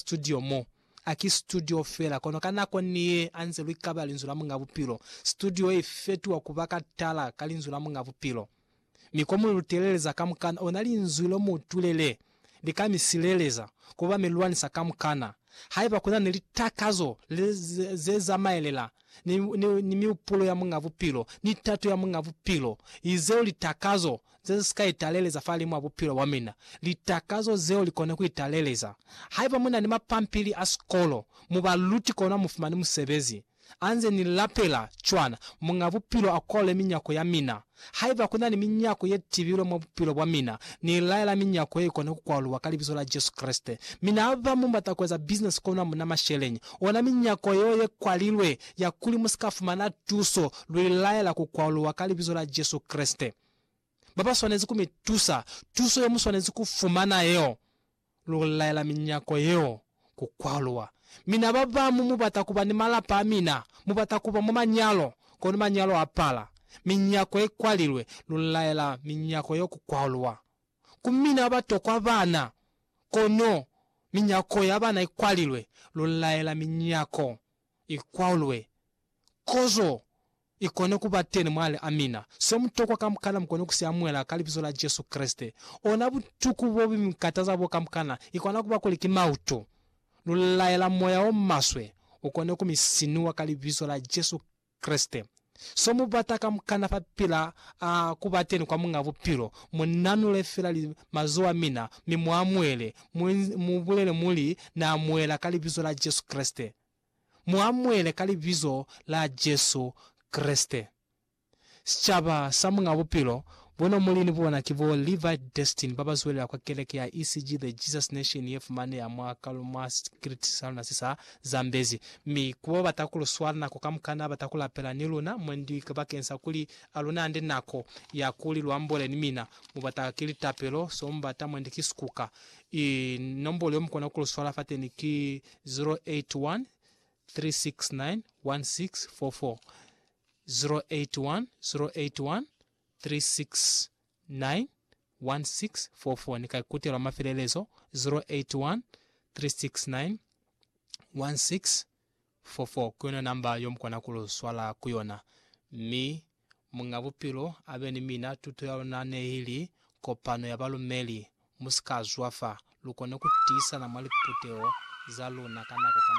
Studio mo. A ki studio fela, kono ka nako ni ye a nze lwi kaba Linzwi la Muñ'a Bupilo. Studio ye fetuwa ku ba katala ka Linzwi la Muñ'a Bupilo. Mi ko mu lu teleleza kamukana, ona Linzwi lo mu tulele, li ka mi sileleza, ku ba mi lwanisa kamukana. Haiba ku na ni litakazo le, ze, ze zamaelela ni, ni, ni miupulo ya Muñ'a Bupilo, ni tato ya Muñ'a Bupilo, izeo litakazo ze ze si ka italeleza fahalimu a bupilo bwa mina, litakazo zeo li kone ku italeleza. Haiba mu na ni mapampili a sikolo, mu ba luti kono mu fumani musebezi. A nze ni lapela, cwana, Muñ'a Bupilo a kolole minyako ya mina, Haiba ku na ni minyako ye tibilwe mwa bupilo bwa mina, ni laela minyako ye i kone ku kwaluwa ka Libizo la Jesu Kreste. Mina haba mu bata ku eza bisinesi kono hamuna masheleñi, ona minyako yeo ye kwalilwe ya kuli mu si ka fumana tuso, lu i laela ku kwaluwa ka Libizo la Jesu Kreste. Ba ba swanezi ku mi tusa, tuso ye mu swanezi ku fumana yeo. Lu laela minyako yeo ku kwaluwa. Mina babamu mu bata kuba ni malapa a mina, mu bata kuba mwa manyalo, kono manyalo a pala. Minyako i kwalilwe. Lu laela minyako yeo ku kwaluwa. Ku mina ba tokwa bana, kono minyako ya bana i kwalilwe. Lu laela minyako i kwaluwe. Kozo I kone ku ba teni mwa li. Amina. Se mu tokwa kamukana mu kone ku si amuhela ka Libizo la Jesu Kreste. Ona butuku bo bu mi kataza boo kamukana, i kona ku ba kuli ki mautu. Lu laela moya o maswe u kone ku mi sinuwa ka Libizo la Jesu Kreste. So mu bata kamukana fa pila a ku ba teni kwa Muñ'a Bupilo, mu nanule fela li mazoho a mina, mi mu amuhele, mu, mu bulele muli, Na amuhela ka Libizo la Jesu Kreste. mu amuele ka Libizo la Jesu Kreste. Sicaba sa Muñ'a Bupilo, bona muli ni bona ki bo Levi Destin ba ba zwelela kwa keleke ya ECG The Jesus Nation ye fumaneha mwa kalu mwa sikriti sa luna se sa Zambezi, mi ku ba bata ku lu swala nako kamukana bata ku lapela ni luna mwendi bakeng sa kuli a lu nande nako ya kuli lu ambole ni mina. Mu bata ki litapelo, so mu bata mwendi ki sikuka. I nombolo yo mu kona ku lu swala fateni ki 0813691644 ni ka ikutelwa mafelelezo 0813691644 kuyona namba yo mukona ku lu swala kuyona mi Muñ'a Bupilo abe ni mina. Tuto ya luna neili kopano ya balumeli. Musika zwafa, lukone kutiisana mwa liputeho zaluna ka nako kamuhelo.